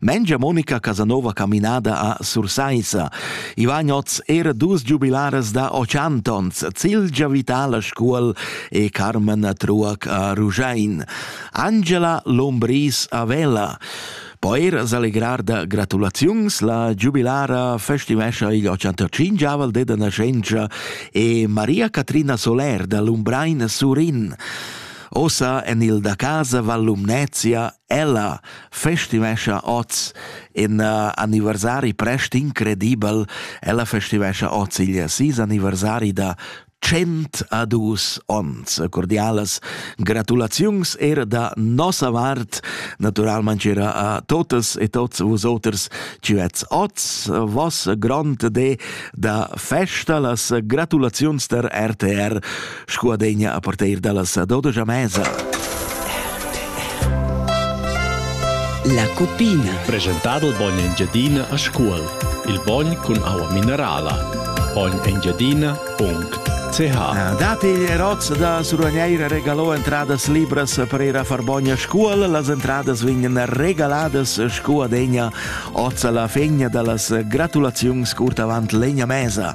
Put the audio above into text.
Mengia Monica Casanova caminada a Sursaissa. I vain oz era dus giubilaras da Ochantons, Cilgia Vital a Scuol e Carmen Truac a Ruschein. Angela Lombris a Vella. Po er s'allegrar da gratulaziuns la giubilara festivescha igl 85-aval deda nascenza e Maria Catrina Soler da Lumbrein Surin. Ossa en il da casa Val Lumnezia Ella festivescha oz in uh, anniversari prest incredibel. Ella festivescha oz il sis anniversari da 100 a dus ons. Cordialas gratulaziuns er da nossa vart, naturalmente era a totes e tots vos oters ci vets oz, vos grond de da festa las gratulaziuns der RTR sco adegna a parteir dallas ad odogia mesa. La cupina. Presentado il bogn Engiadina a Scuol. Il bogn cun aua minerala. bognengiadina.ch ah, Dati Eroz da Suragneira regalò entradas libras per ir a far bogn a Scuol. Las entradas vegnan regaladas scu adegna oz alla fegna dallas gratulaziuns curt avant legna mesa.